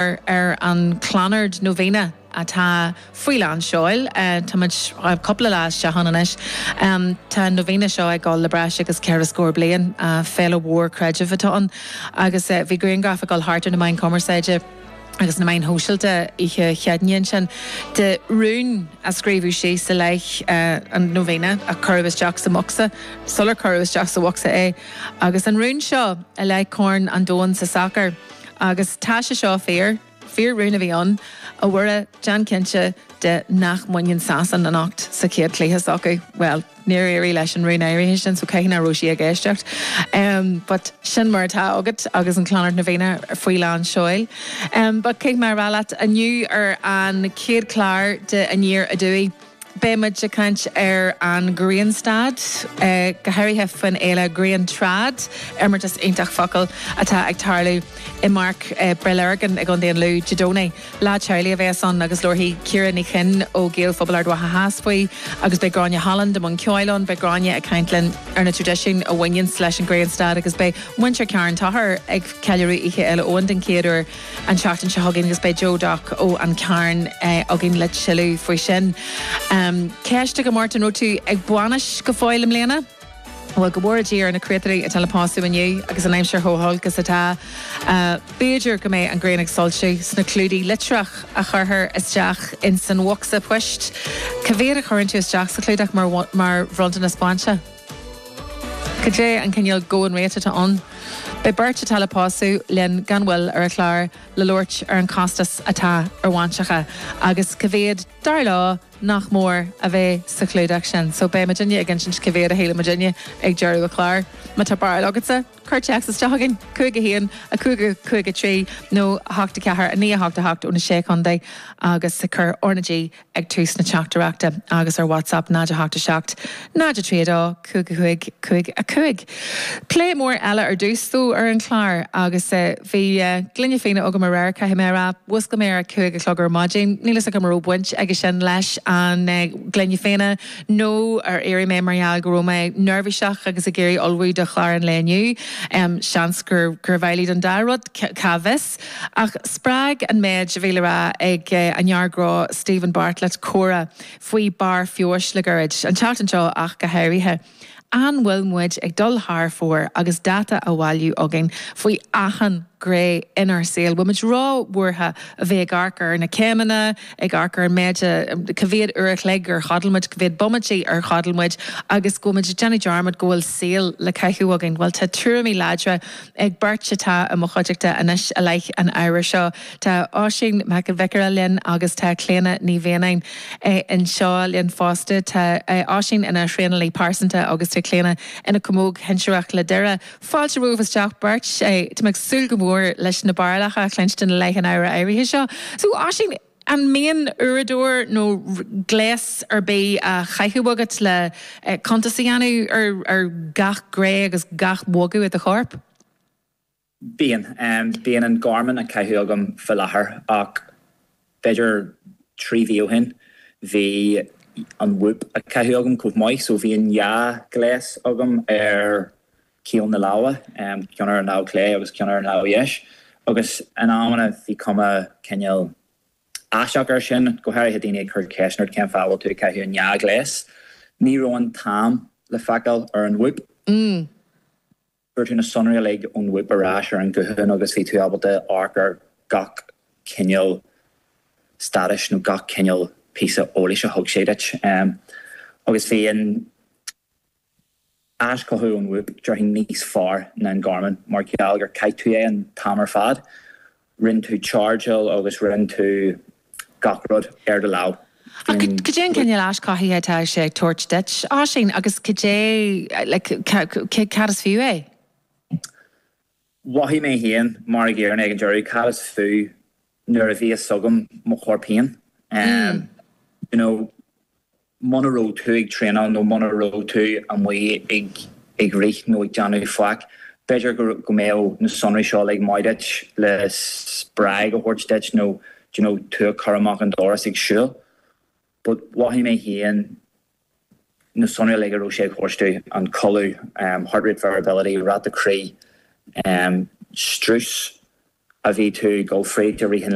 ar an Clonard Novena, atá faoi lán seoil. Táimid cúpla lá isteach ann anois. Tá an Novena seo ag dul le breis agus ceithre scór bliain. Féile mhór creidimh atá ann agus bhí grianghraif ag dul thart ar na meáin cumarsáide agus na meáin shóisialta oíche Chéadaoin ansin de rún a scríobhadh síos i leith an Novena a cuireadh isteach sa mbocsa sular cuireadh isteach sa bhocsa é agus an rún seo i leith Corn an Domhain sa sacar. Agus tá sé seo fíor. Fíor rún a bhí ann, A Mhuire, déan cinnte de nach mbaineann Sasain anocht sa chéad chluiche s'acu. Bhuel, níor éirigh leis an rún áirithe sin so caithfidh nach raibh sí ag éisteacht. But sin mar atá agat agus an Clonard Novena faoi lán seoil. But caithfidh mé a rá leat, inniu ar an chéad chlár de Aniar Aduaidh, Beidh muid ag caint ar an ghrianstad, go háirithe faoin fhéile Griantrad, imeartas iontach focal atá ag tarlú i mPáirc Bhaile na Lorgan i nDún Dealgan Dé Domhnaigh. Lá teaghlaigh a bheas ann agus labharfaidh Ciara Ní Chuinn ó Gaelphobal Ard Mhacha Theas faoi agus beidh Gráinne Holland i mbun ceoil ann. Beidh Gráinne ag caint linn ar na traidisiúin a bhaineanns leis an ghrianstad agus beidh muintir Charn Tochair ag ceiliúradh Oíche Fhéile Eoin den chéad uair. an tseachtain seo chugainn agus beidh Joe Doc ó An Carn againn le tuilleadh faoi sin. Ceist agam ort, an raibh tú ag bainis go fóill i mbliana? Bhuel go bhfóire Dia ar na créatúir atá le pósadh inniu agus an aimsir chomh holc is atá. B'fhéidir go mbeidh an ghrian ag soilsiú sna clúdaigh litreach a chuirthear isteach ins an bhocsa poist. Ca mhéad a chuireann tú isteach sa chlúdach mar bhronntanas bainse? Cad é an cineál going rate atá ann? Beidh beirt atá le pósadh linn gan mhoill ar an chlár le labhairt ar an chostas atá ar bhainseacha agus ca mhéad, dar leo, nach mór a bheith sa chlúdach sin. So beidh mo dhuine ag insint ca mhéad a shíleann mo dhuine ag deireadh an chláir. Ma tá barúil agatsa, cuir téacs isteach chugainn, 51 50 53 nó 8 4 9 8 8 ó na Sé Chontae agus cuir RnaG ag tús na teachtaireachta agus ar WhatsApp 0 8 7 0 3 2 5 5 5 5. Plé mór eile ar dtús, tá, ar an chlár agus bhí gloine fíona agam aréir caithfidh mé a rá. Mhúscail mé ar a cúig a chlog ar maidin. Níl fhios agam an raibh baint aige sin leis an gloine fíona nó ar éirigh mé mar gheall go raibh mé neirbhíseach agus ag iarraidh ullmhú do chlár an lae inniu. Seans gurbh amhlaidh don dá rud, cá bhfios. Ach spreag an méid a bhí le rá ag an fhear gnó Steven Bartlett comhrá faoi barr feabhais le gairid, an tseachtain seo ach go háirithe. An bhfuil muid ag dul thar fóir agus dáta á bhailiú againn faoi achan ghné inár saol? Bhfuil muid róbhuartha a bheith ag amharc ar na céimeanna, ag amharc ar an méid a, ca mhéad uair a chloig ar chodail muid, ca mhéad bomaití ar chodail muid agus go bhfuil muid ag déanamh dearmad go bhfuil saol le caitheamh againn? Bhuel tá tuairimí láidre. Ag beirt atá i mo chuideachta anois i leith an ábhair seo. Tá Oisín Mac an Bhiocáire linn agus tá Clíona Ní Mhianáin anseo linn fosta. Tá Oisín ina thraenálaí pearsanta agus tá Clíona ina camóg shinsearach le Doire. Fáilte romhaibh isteach beirt. Tá mé ag súil go mór leis na barúlacha a chluinstin i leith an ábhair áirithe seo. So, Oisín. An mbíonn uaireadóir nó gléas ar bith á chaitheamh agat le cuntas a dhéanamh ar gach gné agus gach bogadh i do chorp? Bíonn. Bíonn an Garmin á caitheamh agam fá láthair ach b'fhéidir trí mhí ó shin bhí an Whoop á caitheamh agam chomh maith so bhíodh dhá ghléas agam ar chaol na láimhe, ceann ar an lámh chlé agus ceann ar an lámh dheis, agus in amanna bhí cuma cineál aisteach air sin, go háirithe daoine ag cur ceisteanna ort cén fáth a bhfuil tú ag caitheamh an dá ghléas. Ní raibh an t-am le feiceáil ar an Whoop. Fuair tú na sonraí uilig ón Whoop ar ais ar an ghuthán agus bhí tú ábalta amharc ar gach cineál staidéir nó gach cineál píosa eolais a thug sé duit. Agus bhí an. aischothú ón Whoop déarfainn níos fearr ná an Garmin mar gheall gur chaith tú é an t-am ar fad. Rinne tú chargeáil agus rinne tú gach rud ar do lámh. Ach cad é an cineál aischothaithe atá sé ag tabhairt duit, a Oisín? Agus cad é, like, cad is fiú é? Mhothaigh mé féin mar ag fiafraí ag an deireadh cad is fiú nuair a bhí a fhios agam mo chorp féin. You know. Muna raibh tú ag traenáil nó muna raibh tú amuigh ag rith nó ag déanamh a dhath, b'fhéidir go mbeadh na sonraí seo uilig maith duit le spreagadh a thabhairt duit nó you know tú a chur amach an doras ag siúl. But mhothaigh mé féin na sonraí uilig a raibh sé ag tabhairt domh, an codladh, heart rate variability, ráta croí, strus a bhí tú ag dul fríd i rith an